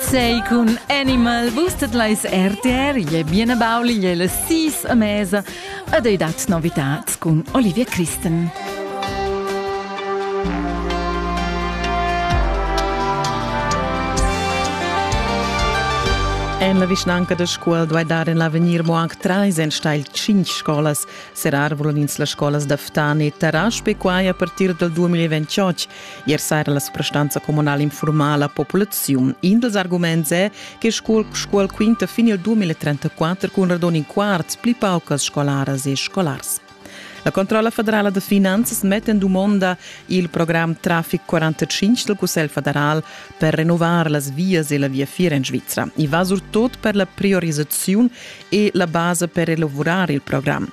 Sei cun Animal boostet leis RTR, je biene Bauli, je le sis a mesa ed ei dat novitats cun Olivia Christen. En la vischnanca da scola duai dar en l'avegnir mo anc trais enstagl cinc scolas. Serrar vulan ins las scolas da Ftan e Tarasp e quai a partir dal 2028. Ier saira la suprastanza communala informa la populaziun. In dals arguments è che scuol, scuol quinta fin il 2034 cun radun in quarts pli paucas scolaras e scolars. La Controlla federala de finanzas mette in domanda il programm Traffic 45 del Cussel federal per renovar las vias e la via Fiera in Svizzera. I va surtot per la priorizzazione e la base per elaborare il programm.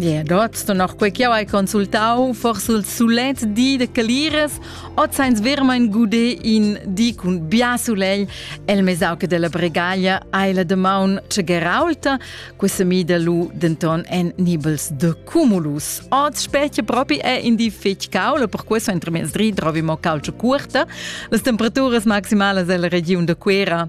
Yeah, dort du noch quei che hai consultau, forse il sulet di de Caliras, o zains vermain gude in di cun bia sulegl, el mesauc della Bregaglia hai la demaun ce geraulta, questa mi de lu denton en nibels de cumulus. Oz specie propi è in di fetg caula, per questo entramesdri trovi mo calcio curta. Las temperaturas maximales della region de Quera